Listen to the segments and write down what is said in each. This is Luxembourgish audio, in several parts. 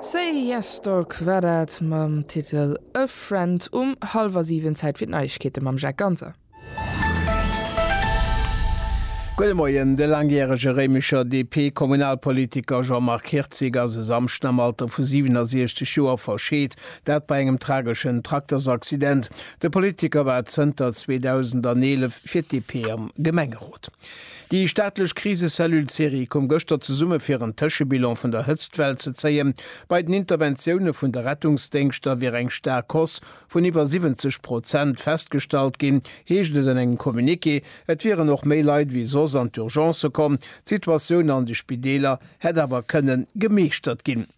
Say Yes Dog war dat mam Titel A Friend um hallwer 7. Zäit fir d'Neiegkeete mam Jacques Ganser. Gudde Moien, De laangjärege Réimecher DP-Kommunalpolitiker Jean-Marc Hirtzig ass e Samschden am Alter vu 67 Joer verscheet, dat bei engem trageschen Traktersaccident. De Politiker war zënter 2011 fir d'DP am Gemengerot. Déi staatlech Krisecellule Serie koum gëschter zesumme fir en Tëschebilan vun der Hëtztwell ze zéien. Bei den Interventioune vun de Rettungsdéngschter wier eng staark Hausse vun iwwer 70 Prozent festgestallt ginn, heescht et an engem Communiqué. Et wieren och méi Leit ewéi soss an d'Urgencë komm. D'Situatioun an de Spideeler hätt awer kënne gemeeschtert ginn.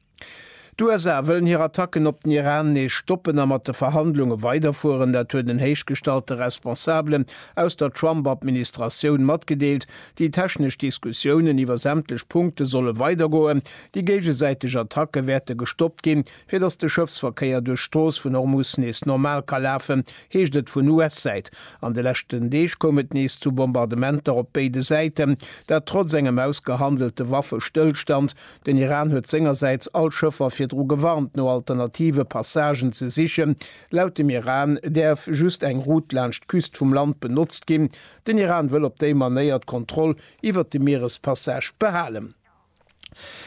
D'USA wëllen hir Attacken op den Iran nees stoppen a mat de Verhandlunge weiderfueren. Dat huet en héichgestallte Responsabelen aus der Trump-Administratioun matgedeelt. Déi technesch Diskussiounen iwwer sämtlech Punkte solle weidergoen. Déi géigesäiteg Attacke wäerte gestoppt ginn, fir datt de Schëffsverkéier duerch d'Strooss vun Hormus nees normal ka lafen, heescht et vun US-Säit. An de leschten Deeg koum et nees zu Bombardementer op béide Säiten, dat trotz engem ausgehandelte Waffestëllstand. Den Iran huet sengersäits all Schëffer virdru gewarnt, no alternative Passagen ze sichen. Laut dem Iran däerf just eng Route laanscht d'Küst vum Land benotzt ginn. Den Iran wëll op déi Manéier d'Kontroll iwwert de Mierespassage behalen.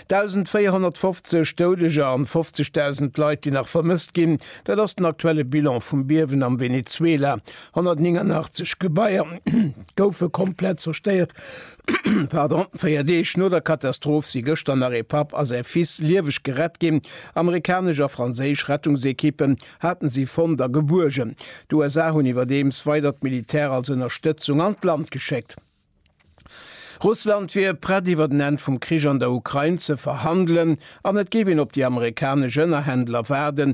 1.450 Doudeger an 50.000 Leit, déi nach vermësst ginn, dat ass den aktuelle Bilan vum Biewen am Venezuela. 189 Gebaier goufe komplett zerstéiert. Véier Deeg no der Katastroph si gëschter nach ee Papp a säi Fils lieweg gerett ginn. Amerikanesch a franséisch Rettungsekippen haten si fonnt a gebuergen. D'USA hunn iwwerdeems weider d'Militär als Ënnerstëtzung an d'Land geschéckt. Russland wier prett iwwer en Enn vum Krich an der Ukrain ze verhandelen an et géif een op déi amerikanesch Ënnerhändler waarden,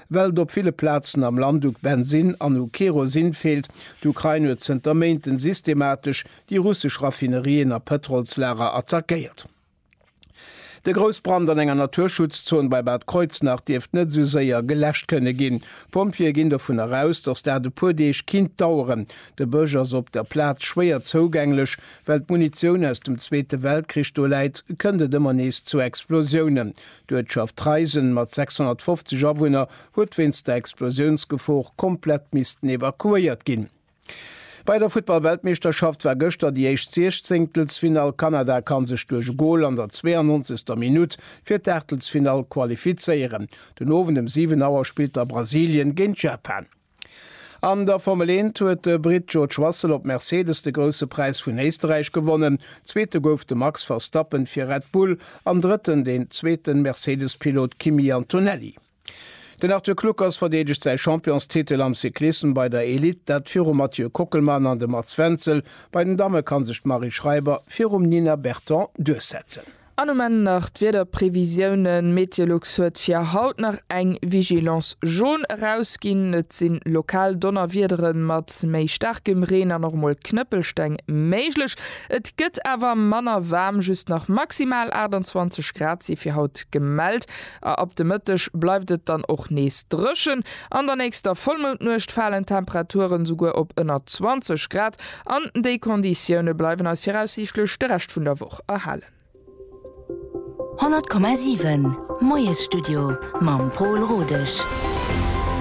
Well et op ville Plazen am Land u Bensinn an u Kerosin feelt. D'Ukrain huet zënter Méinten systematesch déi russesch Raffinerien a Pëtrolslager attackéiert. De Groussbrand an enger Naturschutzzon bei Bad Kreuznach dierft net esou séier geläscht kënne ginn. D'Pompjeeë ginn dovun eraus, datt dat e puer Deeg kinnt daueren. De Bësch ass op der Plaz schwéier zougänglech. Well d'Munitioun aus dem Zweete Weltkrich do läit, kënnt et ëmmer nees zu Explosiounen. D'Uertschaft Treisen mat 650 Awunner huet wéinst der Explosiounsgefor komplett missten evakuéiert ginn. Bei der Futtball-Weltmeeschterschaft war gëschter déi éischt Siechzéngtelsfinall. Kanada kann sech duerch e Gol an der 92. Minutt fir d'Aachtelsfinall qualifizéieren. Den Owend ëm 7 Auer spillt da Brasilien géint Japan. An der Formel 1 huet de Britt George Russell op Mercedes de Grousse Präis vun Éisterräich gewonnen. Zweete gouf de Max Verstappen fir Red Bull an Drëtten den zweete Mercedes-Pilot Kimi Antonelli. Den Arthur Kluckers verdeedegt säi Championstitel am Cyclissem bei der Elite, dat virum Mathieu Kockelmann an dem Mats Wenzel. Bei den Damme ka sech d'Marie Schreiber virum Nina Berton duerchsetzen. An um Enn nach d'Wiederprevisiounen, Meteolux huet fir haut nach eng Vigilance Jaune erausginn. Et si lokal Donnerwiedere mat méi staarkem Reen an och emol Knëppelsteng méiglech. Et gëtt awer manner waarm, just nach maximal 28 Grad si fir haut gemellt. A ab de Mëtteg bleift et dann och nees dréchen. An der nächster Vollmoundnuecht falen d'Temperature souguer op ënner 20 Grad. An déi Konditioune bleiwen eis viraussiichtlech de Rescht vun der Woch erhalen. 100,7 Moiesstudio mam Pol Rodesch.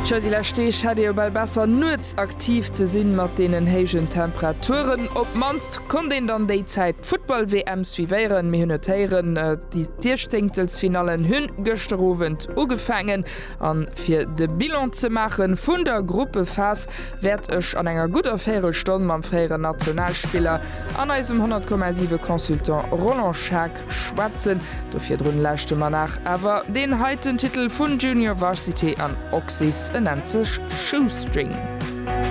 Tjo, déi lescht Deeg hätt ee jo bal besser nuets aktiv ze sinn, mat deenen héijen Temperaturen. Op d'mannst konnt een dann déi Zäit d'Futtball-WM suivéieren. Mir hunn et héieren, déi Siechzehnktelsfinallen hunn gëschter Owend ugefaangen. An fir de Bilan ze maachen vun der Gruppephas wäert ech an enger gudder Véirelstonn mam fréieren Nationalspiller an eisem 100,7 Consultant Roland Schaack schwätzen. Do virdrun lauschte mer nach awer deen heiten Titel vun Junior Varsity an Oxys, en nennt sech Shoestring.